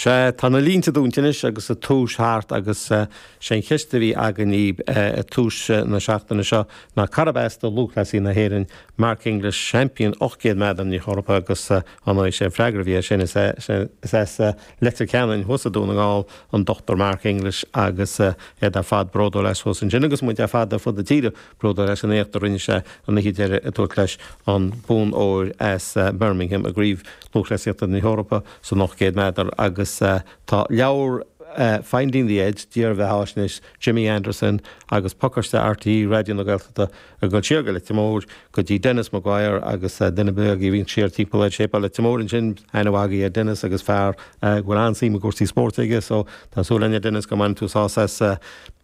Sea, tá na línte dúnta anois agus an tús thart agus sé an cheist a bhí againn dhaoib ag tús na seachtaine seo ná cárb as do lúthchleasaí na hÉireann, Mark English, seaimpín 800 méadar na hEorpa agus ar ndóigh sé an freagra a bhí air sin? Is ea, is as Leitir Ceanainn thuas i nDún na nGall an Dochtúir Mark English agus iad ar fad bródúil as thuas ansin agus muid ar fad ar fud na tíre. bródúil as an éacht a rinne sé an oíche deiridh ag tabhairt leis an bonn óir as Birmingham i gCraobh Lúthchleasaíochta na hEorpa san 800 méadar agus tá leabhar Finding the Edge, dírbheathaisnéis Jimmy Anderson agus Pacáiste RTÉ Raidió na Gaeltachta ag dul siar go Leitir Móir go dtí Denis Maguire agus duine ar bith a bhíonn siar timpeall ar Shéipéal Leitir Móir ansin, aithne mhaith aige ar Denis agus fear go bhfuil an-suim i gcúrsaí spóirt aige so tá súil againne Denis go mbaineann tú sásamh as.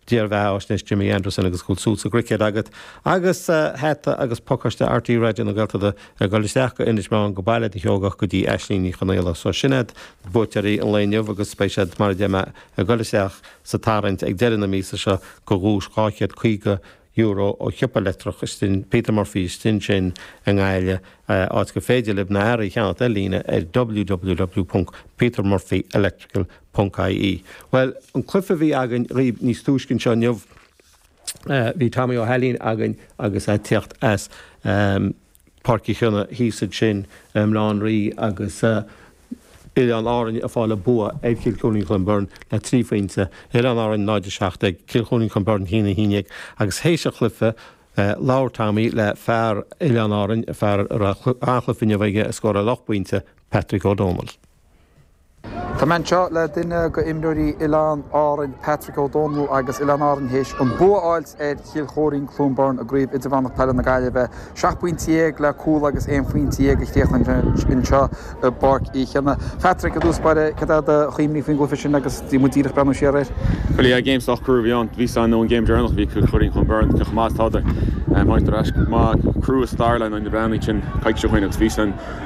Dírbheathaisnéis Jimmy Anderson agus go bhfuil suim sa gcruicéad agat agus hata agus pacáiste RTÉ Raidió na Gaeltachta ag dul isteach go Inis Meáin go Baile an tSeoigeach go dtí Aislínn Ní Chonaola. So sin iad na buaiteoirí an lae inniu agus beidh siad, mar a deir mé, ag dul isteach sa tarraingt ag deireadh na míosa seo go dhuais €250 ó shiopa leictreach Peter Murphy istigh ansin i nGaillimh, áit gur féidir libh na hearraí a cheannacht ar líne ar www.petermurphyelectrical. Ponc ie, Bhuel, an cluife a bhí againn dhaoibh níos túisce anseo inniu, bhí Tommy Ó hAilín againn agus a' teacht as Páirc Uí Chionnaith thíos ansin, i mBaile Átha an Rí agus Oileán Árainn a' fáil a' bua ar Chill Choirín Chluain Bheirn le trí phointe, Oileán Árainn 0 17, Cill Choirín Chluain Bheirn 1 11 agus théis an chluife labhair Tommy le fear Oileán Árainn, fear a raibh an-chluife inniu aige a scóráil ocht bpointe, Patrick Ó Dónaill. Tá mé anseo le duine go imreoirí Oileáin Árainn, Patrick Ó Dónaill agus Oileáin Árainn théis an bua fháilt ar Chill Choirín, Cluain Bheirn i gCraobh Idirmheánach Peile na Gaillimhe. Seacht bpointe dhéag le cúl agus aon phointe dhéag a chríochnaigh muid anseo i bPáirc Uí Chionnaith. Patrick, i dtús baire, céard iad do chuimhní faoin gcluiche sin agus muid díreach ag breathnú siar air? Bhuel, yeah, game sách crua a bhí ann. Bhí a fhios againn ón game deireanach, bhí Cill Choirín Cluain Bheirn cé chomh maith is atádar. Táid ar ais go maith, crua is dar le na Breathnaigh sin coicís ó shoin agus bhí a fhios againn.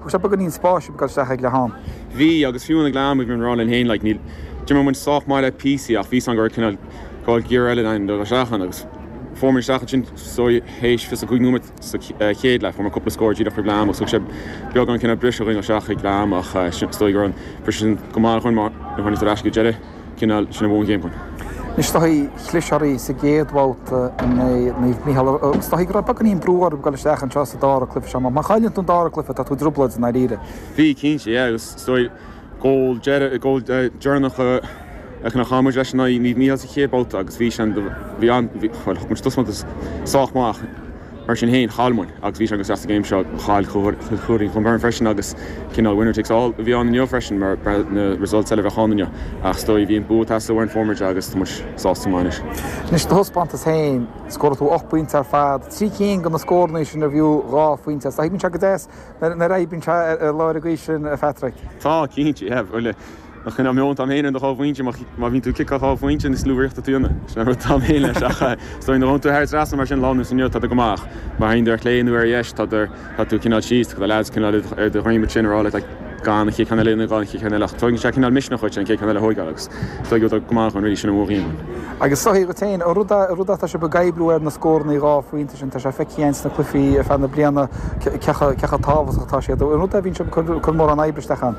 Agus tá beagáinín spáis ag dul isteach ag leath ama. Bhí, agus fiú ag leath ama, bhí muid ag rá linn féin, like, níl, d'imir muid sách maith le píosaí ach bhí a fhios againn go raibh cineál, go raibh gear eile ionainn le dul isteach ann agus fuair muid isteach ansin so théis 25 nóiméad sa chéad leath, fuair muid cúpla scór díreach roimh leath ama agus thug sé beagán cineál briseadh dhúinn isteach ag leath ama ach sin is dóigh go raibh an briseadh sin go maith dhúinn mar níor tháinig sé ar ais go deireadh. chineál sin a bhuann an game. Is dóichí chlis oraibh sa gcéad bhabhta in aghaidh Naomh Micheál, is dóichí go raibh beagáinín brú oraibh dul isteach anseo sa dára cluiche seo, mar má chailleann tú an dára cluiche tá tú i dtrioblóid i ndáiríre. Bhí, cinnte, yeah, agus is dóigh goal deireadh, goal deireanach a fheiceann chaill muid leis in aghaidh Naomh Micheál sa chéad bhabhta agus bhí sé an, bhí an, bhuel, thug muid taispeántas sách maith ach, Mar sin féin, chaill muid agus bhí sé go seasta céim seo. Chaill Cill Choirín Clonberne freisin agus cineál winner takes all a bhí ann inniu freisin mar na results eile a bheadh ann inniu. Ach is dóigh bhí an bua ag teastáil uainn an fómhair deag agus tá muid sásta go maith anois. Anois do thaispeántas féin. Scóráil tú ocht bpointe ar fad. Trí cinn de na scórannaí sin arbh fhiú dhá phointe iad. Tá thig muid seo go deas nuair a oibríonn sé ar lár an gaoth sin, a Phatrick. Tá, cinnte, yeah, bhuel. Ach chan am leo an t-am féin ar na dhá phointe, má bhíonn tú ag ciceáil dhá phointe is lú rith a chaithfidh tú dhéanamh. Sin an rud t-am féin leis, ach is dóigh nuair a théann sé thar an trasnán mar sin lá nó inniu tá tú go maith ach má théann tú ar chlé nó ar dheis tá tú tá tú cineál síos, tá na leaids cineál ar do dhroim ansin a rá leat gan an chéad cheann eile dhéanamh gan an chéad cheann eile ach tugann sé cineál misneach dhuit an chéad cheann eile a thóigeáil agus is dóigh go bhfuil tú go maith ann really sin an méid a bhíonn ann. Agus is dóichí dhuit féin. An rud an rud atá sibh ag oibriú air na scórannaí dhá phointe sin, tá sé feicthe againn sna cluichí ar feadh na bliana cé chomh cé chomh tábhachtach atá siad. An rud a bhíonn sibh ag cur cur mórán oibre isteach ann.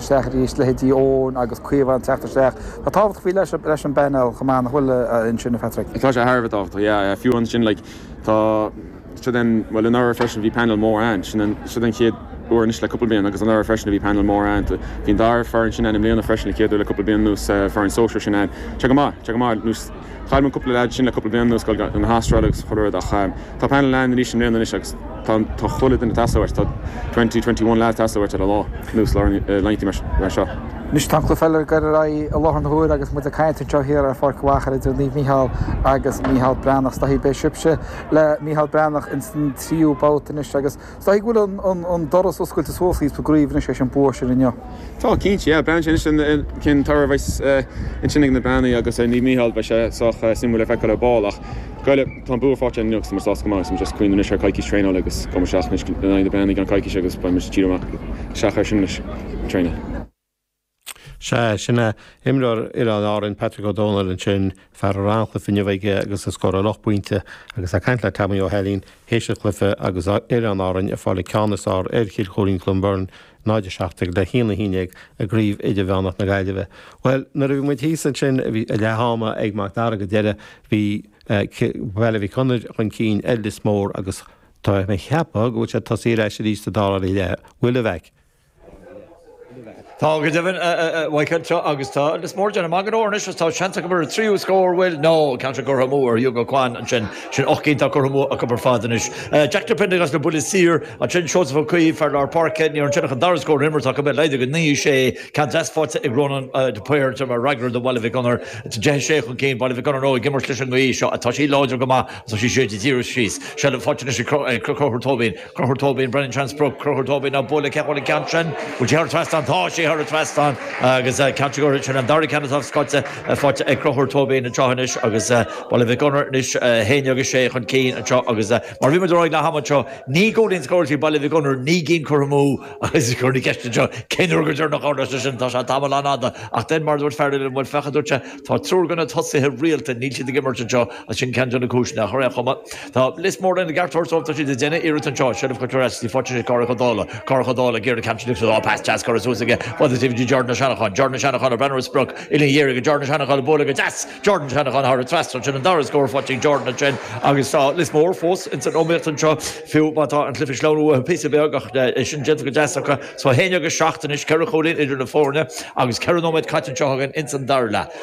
isteach arís, leithéidí Eoin agus Caomhán ag teacht isteach. Tá tábhacht faoi leith leis an bpainéal chomh maith, nach bhfuil, ansin, a Phatrick. Tá sé thar a bheith tábhachtach, yeah. Fiú ansin, like, tá, siod an, bhuel, anuraidh freisin bhí painéal mór ann, sin an, siod an chéad uair anois le cúpla bliain, agus anuraidh freisin a bhí painéal mór ann. Bhí an dara foireann sin ann i mbliana freisin, an chéad uair le cúpla bliain anuas, foireann sóisir sin ann. Tá sé go maith, tá sé go maith. Chaill muid cúpla leaid ansin le cúpla bliain anuas, ag goil chun na hAstráile agus chuile rud, ach tá painéal ann arís i mbliana anois agus tá chuile duine teastáil uait, tá twenty twenty one lads teastáil uait ar a lá, ar nós an lae inniu mar seo. Anois tá an cluiche eile ag goil ar aghaidh i láthair na huaire agus muid ag caint anseo thiar ar Pháirc an Mhachaire idir Naomh Mícheál agus Mícheál Breathnach. Is dóichí beidh sibhse le Mícheál Breathnach ins an tríú babhta anois agus. Is dóigh go bhfuil an doras oscailte suas dhaoibh sa gcraoibh anois leis an bua sin inniu. Tá, cinnte, yeah. Beidh sé anois cén toradh a bheidh ansin ag na Breathnaigh agus ar Naomh Mícheál beidh sé sách suimiúil le feiceáil ar ball ach goile, tá an bua fáighte inniu agus tá muid sásta go maith agus muid as craoibh anois ar coicís traenáil agus gabhfaidh muid isteach anois in aghaidh na mBreathnach i gceann coicís agus beidh muid dírithe amach is amach ar sin anois traenáil. Sea, sin é. Imreoir Oileáin Árainn, Patrick Ó Dónaill, ansin, fear a raibh an-chluiche inniu aige agus a scóráil ocht bpointe, agus ag caint le Tommy Ó hAilín, théis an chluiche, agus Oileáin Árainn ag fáil an ceann is fearr ar Chill Choirín Clonberne, 0-17 le 1-11, i gCraobh Idirmheánach na Gaillimhe. Bhuel, nuair a bhí muid thíos ansin, bhí leath ama ag Mac Dara go deimhin, bhí Baile Mhic Gonair chun cinn ar Lios Mór, agus tá mé ag ceapadh go bhfuil siad tosaithe ar ais arís sa dara leath. Bhfuil, a Mhaic? Tá, go deimhin, mhaígh an tSiúr agus tá Lios Mór de na maidhmeanna óir anois agus tá seans acu ar an tríú scór, bhuel, an ceann seo curtha amú ag Hugo Quann ansin. Sin ocht gcinn atá curtha amú acu ar fad anois. Jack de Priondargás as na buillí saora ansin, Seosamh Ó Cuív, fear lár páirce, níor fhan sé ach an dara scór ón imirt acu, é laghdaithe go 9, 6. Ceann deas faighte ag Rónán de Paor ansin mar fhreagra do Bhaile Mhic Gonair, 10, 6 chun cinn Baile Mhic Gonair nó ag imirt leis an ngaoth seo, tá sí láidir go maith agus tá sí ag séideadh díreach síos. Seilbh faighte anois ag Conchúr Tóibín. Conchúr Tóibín, ag breathnú ar an sprioc, Conchúr Tóibín á bualadh ceann an ceann sin. Bhfuil sé thar an trasnán? Tá sé thar an trasnán agus ceann sé ag Conchúr. Sin an dara ceann atá scoite faighte ag Conchúr Tóibín anseo anois agus Baile Mhic Gonair anois 11-6 chun cinn anseo agus mar a bhí muid ag rá ag leath ama anseo, naoi gcúilín scóráilte ag Baile Mhic Gonair, naoi gcinn curtha amú agus cuireadh an cheist anseo, cén uair go deireanach a tharla sé sin? Tá sé tamall an-fhada ach den mar a dúirt fear eile liom, bhuel féach a dúirt sé, tá triúr de na tosaithe rialta, níl siad ag imirt anseo agus sin ceann de na cúiseanna. Ar aon chuma. Tá Lios Mór ina gceartlár só tá siad ag déanamh iarracht anseo seilbh a chur ar ais. Tá sí faighte ag Carthach Ó Dálaigh, Carthach Ó Dálaigh, Gearoid Hampton agus á pas deas curtha suas aige go dtí Jordan Ó Seanacháin, Jordan Ó Seanacháin ag breathnú ar sprioc uillinn dheacair ag Jordan Ó Seanacháin á bualadh go deas Jordan Ó Seanacháin thar an trasnán sin an dara scór faighte ag Jordan ansin agus tá Lios Mór fós ins an iomaíocht anseo fiú má tá an cluiche ag sleamhnú uathu píosa beag ach tá é sin déanta go deas acu. So 11-7 anois ceithre chúilín idir na foirne agus ceithre nóiméad caite anseo againn ins an dara leath.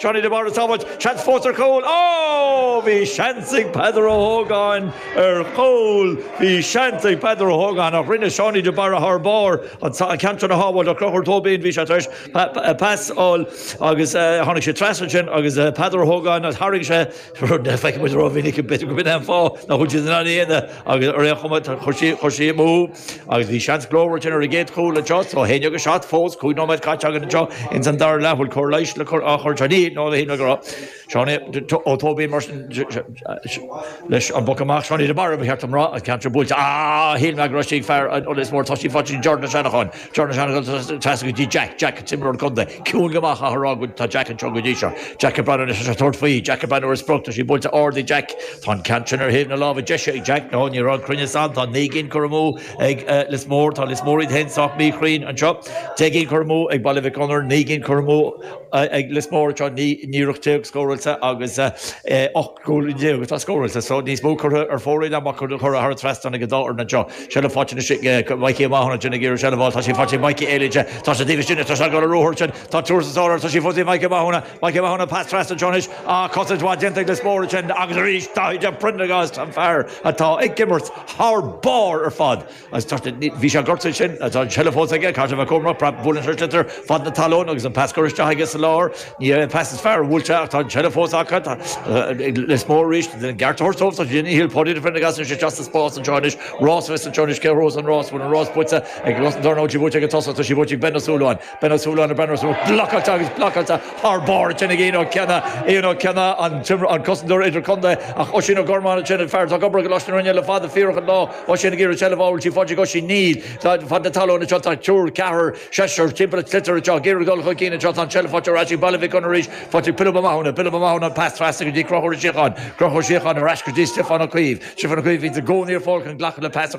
Seánie De Barra sábháilt, seans fós ar chúl, Ó! Bhí seans ag Peadar Ó hÓgáin ar chúl, Bhí seans ag Peadar Ó hÓgáin ach rinne Seánie De Barra thar barr an ceann sin a shábháilt ach Conchúr Tóibín bhí sé tar éis pas a fháil agus tháinig sé trasna ansin agus Peadar Ó hÓgáin tharraing sé rud nach bhfeiceann muid rómhinic, b'fhéidir gurb in é an fáth nach bhfuil siad in ann a dhéanamh, agus ar aon chuma chuaigh sí amú agus bhí seans glórmhar ansin ar an gcéad chúl anseo, so 11-7 fós, cúig nóiméad caite againn anseo ins an dara leath, bhfuil cóir leighis le cur, á chur anseo, níl, no, shíl mé go raibh, Seán Ó Tóibín mar sin, leis an bpoc amach, Seánie de Barra ba cheart dom a rá, an ceann seo buailte, á, shíl mé go raibh sí ag fear Lios Mór, tá sí faighte, Jordan Ó Seanacháin. Jordan ar aghaidh trasna go dtí Jack. Jack an t-imreoir contae. Ciúin go maith, chaithfeá a rá, atá Jack anseo go dtí seo. Jack ag breathnú anois leis ag tabhairt faoi. Jack ag breathnú ar an sprioc. Tá sí buailte ard ag Jack. Tá an ceann sin ar thaobh na láimhe deise ag Jack. No, ní raibh an cruinneas ann. Tá naoi gcinn curtha amú ag Lios Mór. Tá Lios Mór iad féin sách míchruinn anseo. Deich gcinn curtha amú ag Baile Mhic Gonair. Naoi gcinn curtha amú ag Lios Mór anseo. Ní raibh ach ocht déag scóráilte agus Go deimhin, tá scór eastóscadh níos mó curtha ar fóraoil ná mar a cuireadh thar an trasnán ag an dá fhoireann anseo. Seilbh faighte anois ag Micí Ó Mathúna ansin ag iarraidh seilbh a fháil. Tá sí faighte ag Micí Éilín ansin. Tá sé taobh istigh anois. Tá sé ag dul ar ruathar ansin. Tá triúr sna sála air. Tá sí fós ag Micí Ó Mathúna. Micí Ó Mathúna, Pas trasna anseo anois. Á, cosaint mhaith déanta ag Lios Mór ansin. Agus arís Dáithí de Priondragás, an fear atá ag imirt thar barr ar fad. Bhí sé gortaithe ansin. Tá an tseilbh fós aige, caithfidh sé a bheith cúramach, praib bhuaileann sé an sliotar fad na talún agus an pas curtha isteach aige sa lár. Ní hé an pas is fearr a bhuail sé ach tá an tseilbh fós acu. Tá Lios Mór arís a gceart a thabhairt dóibh sa tslí ina shíl Paudie de Priondragás tá sé isteach sa spás anseo anois. Rás a bheas anseo anois. Cé a bhuafas an rás? Bhfuil an rás buaite ag cosantóir nó an bhfuil sí buaite ag an tosaí. Tá sí buaite ag Ben Ó Súilleabháin. Ben Ó Súilleabháin, Ben Ó Súilleabháin blocáilte agus blocáilte thar barr ansin ag Ian Ó Cionnaith, Ian Ó Cionnaith, an cosantóir idirchontae, ach Oisín Ó Gormáin ansin, an fear atá ag obair i gColáiste na Rinne le fada fíorach an lá, Oisín ag iarraidh seilbh a fháil, bhfuil sí faighte ag Oisín? Níl, tá, fad na talóna seo, tá triúr, ceathrar, seisear, timpeall ar an sliotar anseo, ag iarraidh dul chun cinn anseo, tá an tseilbh faighte ar ais ag Baile Mhic Gonair arís, faighte ag Pilib Ó Mathúna, Pilib Ó Mathúna, an pas trasna go dtí Conchúr Ó Síocháin, Conchúr Ó Síocháin, ar ais go dtí Stiofán Ó Caoimh, Stiofán Ó Caoimh, a bhíonn i gcónaí ar fáil chun glacadh le pas a